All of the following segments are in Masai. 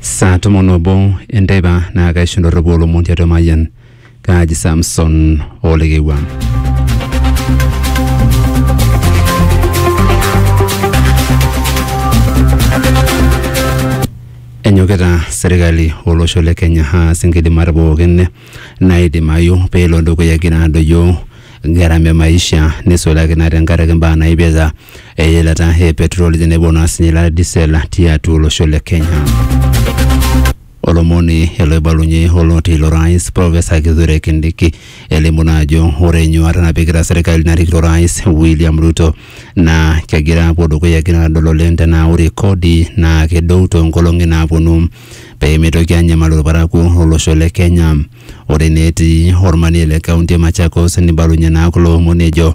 saa tomon obo enteipa naa kaisho ndorropu olomon tiatua mayian kaaji samson olekewua enyokita serkali olosho le kenya aas inkidimat pookin naidimayu peelo dukuya egira adoyio gharama e maisha nisulaki naa tenkaraki imbaa naipirta eilata e petroli tenebo naa sinye eilata e diesel tiatua olosho le Kenya. Olomoni oloibalunye oloti ilo rais Professor Kithure Kindiki elimu naa ajo ore enyuata napikita serkali narikito rais William Ruto naa kegira apuo dukuya egira adol oleng tenaa ore kodi naa kedou toonkolong'i naaponu peemitoki anyamal irparakuo lolosho le Kenya. Ore naa etii ormanie le kaunti e Machakos nibalunye naa kulo omon ejo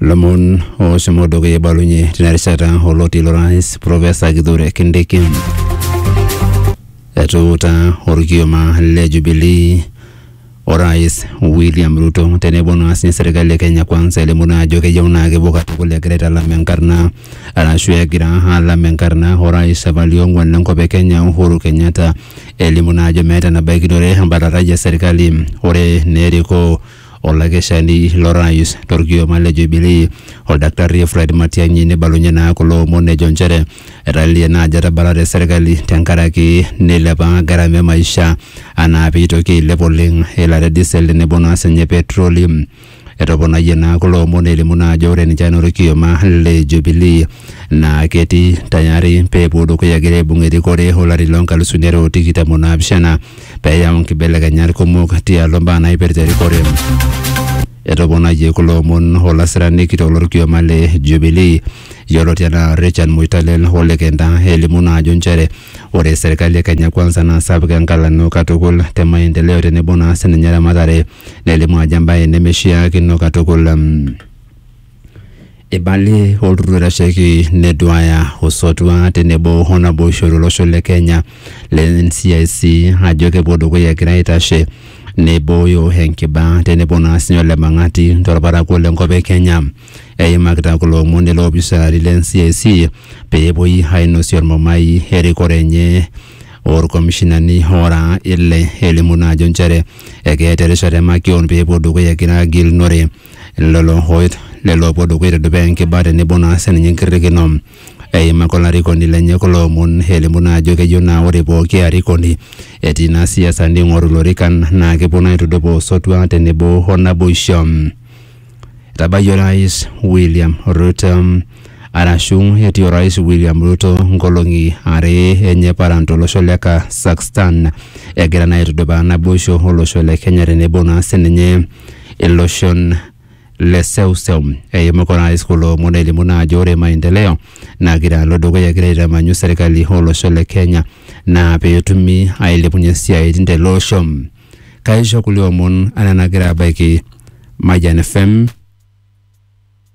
lomon oshomo dukuya eibalunye tina rishata oloti lorais profesa kithure kindiki etuuta orkioma le jubilii orais william ruto tenebo naa sinye serkali e kenya kwanza elimu naa ajo keyieu naa kepuo katukul egira aitalam enkarna arashu egira alam enkarna orais apa liong'uan lenkop e kenya uhuru kenyatta elimu naa ajo meeta enabaikinore embatatai e serkali ore naa erikoo Olakeshani lorais torkioma le Jubilee Oldaktarri Fred Matiang'i neibalunye naa kulo omon ejo nchere etalilie naa ajo etabalate serkali tenkaraki neilepa gharama e maisha anaa pee eitoki ailep oleng eilata e diesel tenebo naa sinye petroli. Etoponayie naa kulo omon elimu naa ajo ore ninche anaa olkioma le Jubilee naa ketii tayari pee epuo dukuya egira aibung erikore olari loo nkalisuni are o tikitam o naapishana peyau nkibelekenyat kumok tialo mbaa naipirta erikore. Etoponayie kulo omon olasirani kitok lorkioma le Jubilee yioloti anaa Richard Moitalel ole Kenta elimu naa ajo nchere ore serkali e Kenya Kwanza naa sapuk enkalano katukul te maendeleo tenebo naa sininye eramatare nelimu ajo embae nemeshiakino katukul. Eibalie olturur oitasheki neduaya osotua tenebo o naboisho to losho le Kenya le NCIC ajo kepuo dukuya egira aitashe neibooyo enkiba tenebo naa sii ole mang'ati to lparakuo le nkop e Kenya. Eimakita kulo omon iloopisani le NCIC pee epuoi ainosie olmumai erikore enye o lkomishinani oora ile elimu naa ajo inchere ekeeta erishata e makeon pee epuo dukuya egira agilunore lelo hooit lelo opuo dukuya aitudupaa enkiba tenebo naa sininye enkirrikino eimaka olarikoni lenye kulo omon elimu naa ajo keyieu naa ore pooki arikoni etii naa siasa ning'oru ilorikan naa kepuo naa aitudupaa osotua tenebo o naboisho. Etabayie orais William Ruto arashu etii orais William Ruto nkolong'i are enye paran tolosho le Kazakhstan egira naa aitudupaa naboisho olosho le Kenya tenebo naa sininye iloshon le seuseu eimu kuna rais kulo omon elimu naa ajo ore maendeleo nagira alo dukuya egira aitamanyu serkali olosho le Kenya naa peetumi ailepunyie isiaitin tele osho. Kaisho kulie omon anaa enagira abaiki Mayian FM.